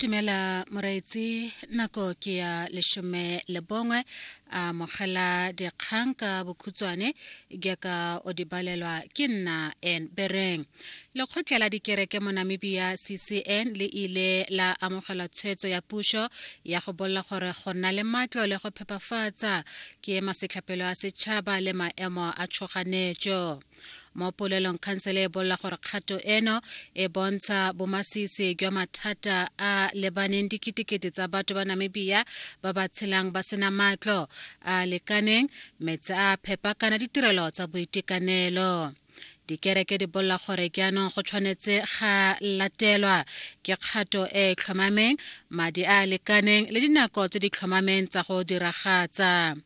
dumela moraetsi nako ke ya leshome le bongwe a mogela dikgang ka bokhutshwane jaaka o di balelwa ke nna en bereng lekgotla la dikereke mo namibia ccn le ile la amogela tshwetso ya puso ya go bolela gore go nna le matlo le go phepafatsa ke masetlhapelo a setšhaba le maemo a tshoganetso mo polelong khansele e bolola gore kgato eno e bontsha bomasisi jwa mathata a lebaneng diketekete tsa batho ba namibia ba ba tshelang ba sena matlo a lekaneng metse a phepa kana ditirelo tsa boitekanelo dikereke di bolela gore jaanong go tshwanetse ga latelwa ke kgato e e tlhomameng madi a a lekaneng le dinako tse di tlhomameng tsa go diragatsa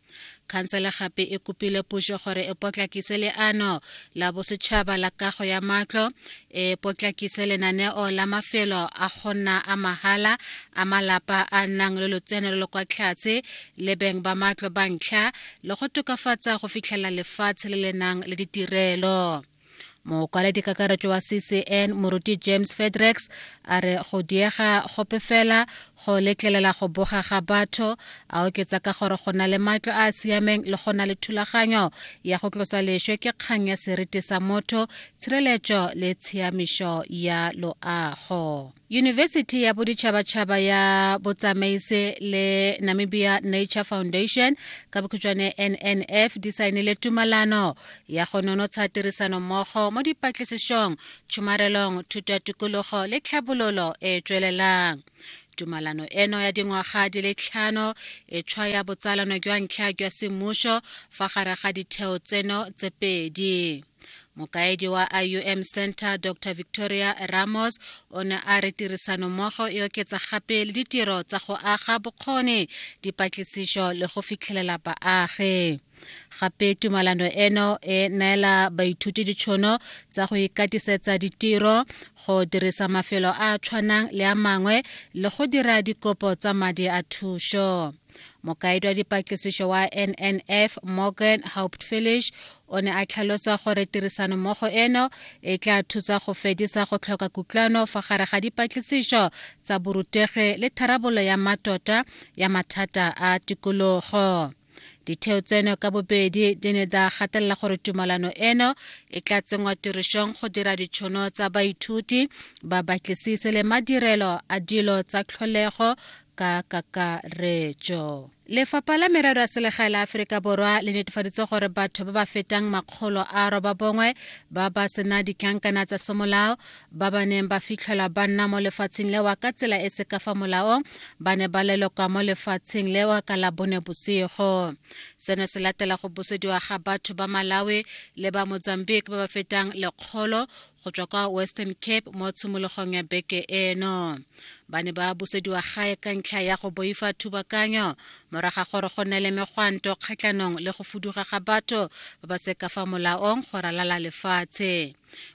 Khansele gape e kopile puso gore e potlakise leano la bosetšhaba la kago ya matlo, e potlakise lenaneo la mafelo a go nna a mahala a malapa a nnang le lotseno lo lo kwa tlhatse le beng ba matlo ba ntlha le go tokafatsa go fitlhelela lefatshe le le nang le ditirelo. mokwaledi kakaretso wa ccn moruti james fedrex a re go diega gope fela go letlelela go boga ga batho a oketsa ka gore go na le matlo a a siameng le go na le thulaganyo ya go tlosa leswe ke kgang ya seriti sa motho tshireletso le tshiamišo ya loago Yunibesithi ya Boditšhabatšhaba ya Botsamaisi le Namibia Nature Foundation ka bokhutšwane NNF di saenile tumalano ya go nonotsha tirisano mmogo mo dipatlisišong, tšhomarelong, thuto ya tikologo le tlhabololo e e tswelelang. Tumalano eno ya dingwaga di le tlhano e tshwaya botsalano jwa ntlha jwa semmušo fa gare ga ditheo tseno tse pedi. mokaedi wa iom center dr victoria ramos o ne a re tirisanommogo e oketsa gape le ditiro tsa go aga bokgoni dipatlisiso le go fitlhelela baagi gape tumalano eno e neela baithuti ditšhono tsa go ikatisetsa ditiro go dirisa mafelo a a tshwanang le a mangwe le go dira dikopo tsa madi a thušo mokaedi wa dipatlisiso wa nnf morgan hauptfilish o ne a tlhalosa gore tirisanommogo eno e tla thusa go fedisa go tlhoka kutlwano fa gare ga dipatlisiso tsa borutegi le tharabololo ya matota ya mathata a tikologo ditheo tseno ka bobedi di ne da gatelela gore tumalano eno e tla tsenngwa tirišong go dira ditšhono tsa baithuti babatlisise le madirelo a dilo tsa tlholego ka kakaretso lefapha la merero ya selegae la aforika borwa le netefaditse gore batho ba ba fetang makgolo a roba bongwe ba ba sena ditlankana tsa semolao ba ba neng ba fitlhelwa ba nna mo lefatsheng lewa ka tsela e se ka fa molaong ba ne ba lelokwa mo lefatsheng lewa ka la bone bosigo seno se latela go busediwa ga batho ba malawi le ba mozambique ba ba fetang lekgolo go tswa kwa western cape mo tshimologong ya beke eno ba ne ba busediwa gae ka ntlha ya go boifa thubakanyo moraga gore go nne le megwanto kgatlhanong le go fuduga ga batho ba ba seka fa molaong go ralala lefatshe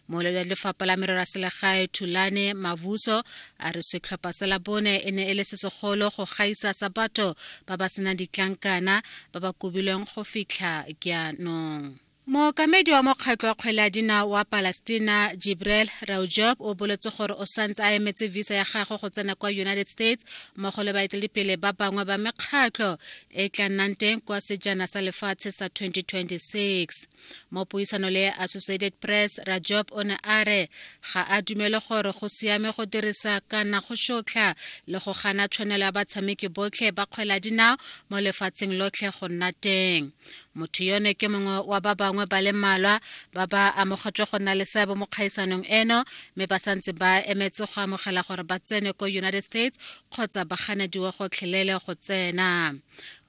molelo ya lefapha la merero ya selegae thulane mavuso a re setlhopha sa labone e ne e le se segolo go gaisa sa batho ba ba senang ditlankana ba ba kobilweng go fitlha jaanong Mookamedi wa mokgatlho wa kgwele ya dinao wa Palestina, Jibreel Raujoob, o boletse gore o santse a emetse visa ya gagwe go tsena kwa United States mmogo le baeteledipele ba bangwe ba mekgatlho e e tla nnang teng kwa sejana sa lefatshe sa 2026. Mo puisano le Associated Press, Rajob o ne a re ga a dumele gore go siame go dirisa kana go shotlha le go gana tshwanelo ya batshameki botlhe ba kgwele ya dinao mo lefatsheng lotlhe go nna teng. motho yono ke mongwe wa ba bangwe ba le mmalwa ba ba amogetswe go nna le seabe mo kgaisanong eno mme ba santse ba emetse go amogela gore ba tsene ko united states kgotsa ba ganediwe gotlhelele go tsena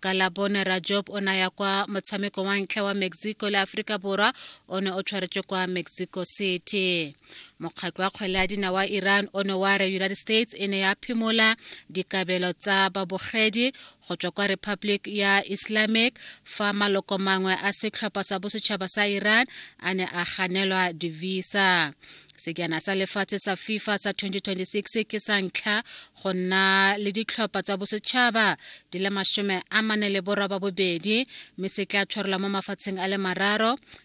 ka labone rajob o naya kwa motshameko wa ntlha wa mexico le aforika borwa o ne o tshwaretswe kwa mexico city mokgatlho wa kgwele ya dina wa iran o ne wa re united states e ne ya phimola dikabelo tsa babogedi go tswa kwa republic ya islamic fa maloko mangwe a setlhopha sa bosetšhaba sa iran a ne a ganelwa divisa sekjana sa lefatshe sa fifa sa 2026 ke sa ntlha go nna le ditlhopha tsa bosetšhaba di le masome a mane le boraba bobedi mme se tla tshwarelwa mo mafatsheng a le mararo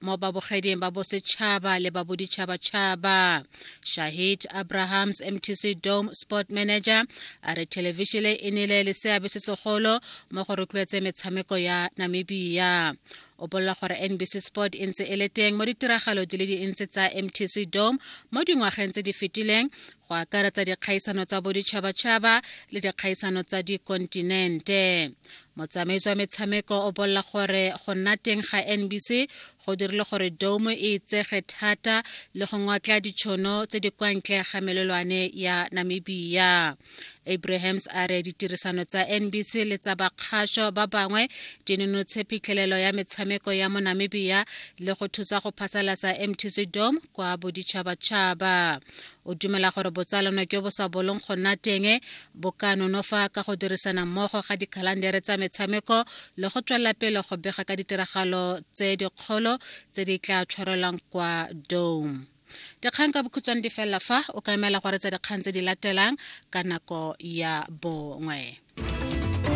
mo babogeding ba bosetšhaba le ba boditšhabatšhaba shahid abrahams mtc dome sport manager a re thelevishile e nele le seabe se segolo mo go rotloetse metshameko ya namibia o bolela gore nbc sport e ntse e le teng mo ditiragalo di le dintsi tsa mtc dome mo dingwageng tse di fetileng go akaretsa dikgaisano tsa boditšhabatšhaba le dikgaisano tsa dikontinente Motsamaisi wa metshameko o bolela gore go nna teng ga NBC go dirile gore dome e itsege thata le go ngwatla ditšhono tse di kwa ntle ga melelwane ya Namibia. Abrahams a re ditirisano tsa NBC le tsa bakgasho ba bangwe di nonotshe phitlhelelo ya metshameko ya mo Namibia le go thusa go phasalasa MTC Dome kwa boditšhabatšhaba. O dumela gore botsalano jo bo sa bolong go nna teng bo ka nonofa ka go dirisana mmogo ga dikhalandere tsa metshameko le go tswelela pele go bega ka ditiragalo tse dikgolo tse di tla tshwarelwang kwa dome dikgang ka bokhutshwane di felela fa o ka emela gore tsa dikgang tse di latelang ka nako ya bongwe